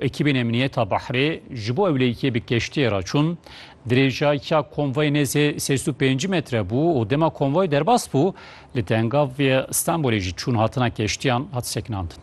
Ekîbên Emniyeta Behrê ji bo ewleyîkê bi keştiyê re çûn. Dirêjayîkya konvoyê nêzê sêz û pêncî metre bû û dema konvoy derbas bû, li Tengav yê Stenbolê jî çûn hatina keştiyan hat sekinandin.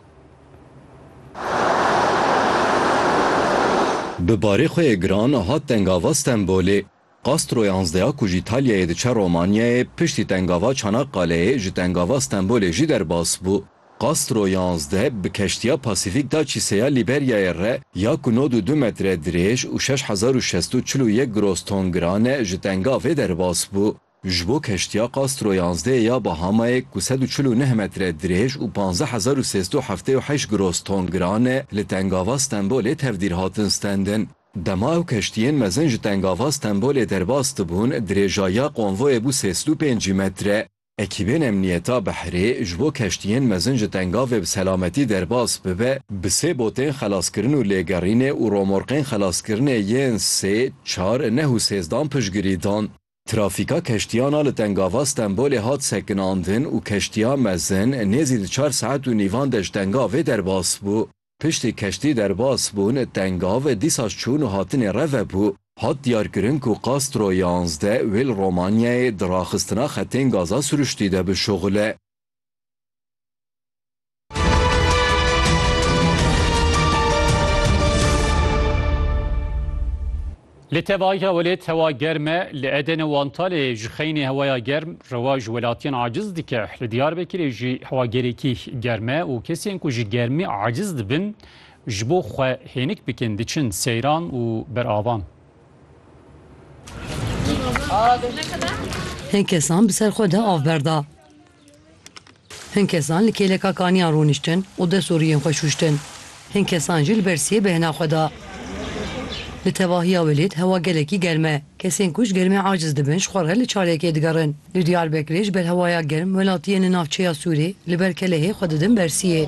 Bi barê xwe yê giran hat Tengava Stenbolê. Castro ya Anzdeya ku ji Îtalyayê diçe Romanyayê, piştî tengava Çanakkale'yê ji tengava Stenbolê jî derbas bû. Castro ya Anzde bi keştiya Pasîfîk da çîseya Lîberyayê re ya ku nod û du metre dirêj û şeş hezar û şesto çil û yek groston giran e, ji tengavê derbas bû. Ji bo keştiya Castro yanzdeh ya Bahamayê ku sed û çil û neh metre dirêj û panzdeh hezar û sê sed û heftê û heşt gross ton giran e, li Tengava Stenbolê tevdîr hatin stendin. Dema ew keştiyên mezin ji Tengava Stenbolê derbas dibûn, dirêja ya konvoyê bû sê sed û pêncî metre. Ekîbên emniyeta behrê ji bo keştiyên mezin ji Tengavê bi selametî derbas bibe, bi sê botên xelaskirin û lêgerînê û romorqên xelaskirinê yên sê, çar, neh û sêzdan piştgirî dan. Trafîka keştiyan a li Tengava Stenbolê hat sekinandin û keştiya mezin nêzî di çar saet û nîvan de ji Tengavê derbas bû. Piştî keştî derbas bûn, Tengav dîsa ji çûn û hatinê re vebû. Hat diyarkirin ku Castro yanzdeh wê li Romanyayê di raxistina xetên gaza siruştî de bişuxile. Li tevahîka welêt hewa germ e, li Eden û Antalê ji xeynê hewaya germ rewa ji welatiyên aciz dike. Li Diyarbekirê jî hewa gelekî germ e û kesên ku ji germî aciz dibin ji bo xwe hênik bikin diçin seyran û beravan. Hin kesan bi ser xwe de av berda. Hin kesan li kêleka kaniyan rûniştin û dest û riyên xwe şûştin. Hin kesan jî li ber siyê bêhna xwe da. Li tevahiya Welêt hewa gelekî germ e. Kesên ku ji germê aciz dibin ji xwe re li çalêkê digerin. Li Diyarbekirê ji ber hewaya germ welatiyên li navçeya Sûrê li ber Kelehê xwe didin ber siyê.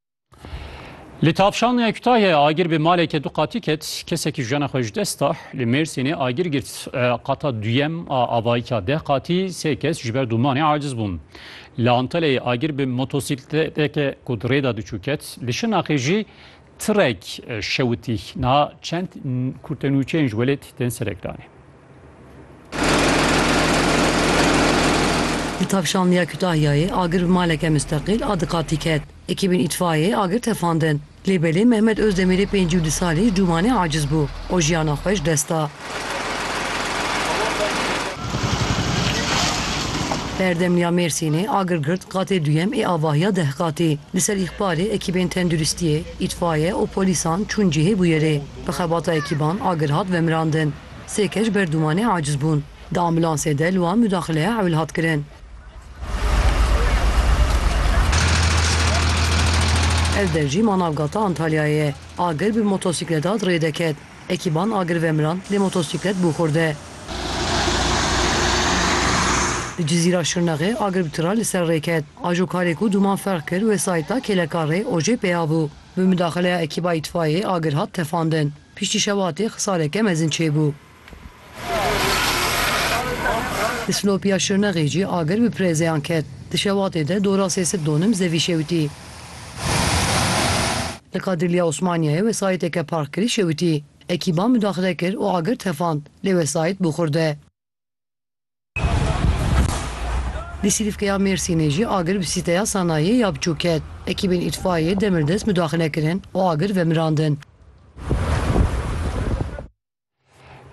Li tavşan ya Kütahya'ya agir bi maleke du qatî ket, kesekî jiyana xwe ji dest da. Li Mêrsînê agir girt qata duyem a avayîka deh qatî, sê kes ji ber dûmanê aciz bûn. Li Antalya'yê agir bi motosîkleteke ku di rêda diçû ket. Li Şirnaxê jî tirek şewitî. Niha çend kurtenûçeyên ji welêt tên serekdanê. Di tavşandiya Kutahyayê agir bi maleke misteqîl a diqatî ket. Ekîbên îtfayeyê agir tefandin. Lê belê Mehmet Ozdemirê pêncî û du salî ji dûmanê aciz bû û jiyana xwe ji dest da. Berdemliya Mêrsînê agir girt qatê duyem ê avahiya deh qatî. Li ser îxbarê ekîbên tenduristiyê, îtfaye û polîsan çûn cihê bûyerê. Bi xebata ekîban agir hat vemirandin. Sê keş ber dûmanê aciz bûn. Di ambulansê de li wan mudaxileya ewil hat kirin. Ev derjî Manavgata Antalyayê ye. Agir bi motosîkleda di rê de ket. Ekîban agir vemiran lê motosîklet bû xurde. Li Cizîra Şirnexê agir bi tira li ser rê ket. Ajo karê ku dûman ferq kir wesayîta kêlekarê OJP'ê ya bû. Bi mudaxileya ekîba îtfayeyê agir hat tefandin. Piştî şewatê xisaleke mezin çêbû. Di Silopiya Şirnexê jî agir bi pirêzeyan ket. Di şewatê de dora sê sed donim zevî şewitî. Li Kadirliya Osmaniyeyê wesayîteke parkirî şewitî. Ekîban midaxile kir û agir tefand, lê wesayît bû xurde. Di Sîlîfkeya Mêrsînê jî agir bi sîteya sanayiyê ya biçûk ket. Ekîbên îtfaiyê demirdest mudaxile kirin û agir vemirandin.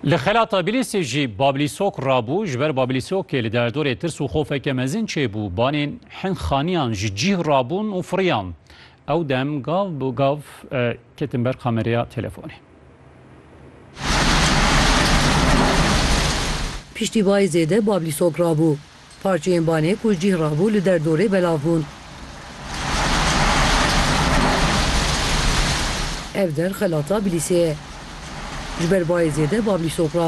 Li xelata Bilîsê jî Bablîsok rabû. Ji ber Bablîsokê li derdorê tirs û xofeke mezin çêbû. Banên hin xaniyan ji cîh rabûn û firiyan. Ew dem gav bi gav ketin ber kamereya telefonê. Piştî bayê zêde Bablî sok rabû. Parçeyên banê ku cîh rabû li der dorê belav bûn. Ev der xelata Bilîsê ye. Ji ber bayê zêde Bablî sok rabû.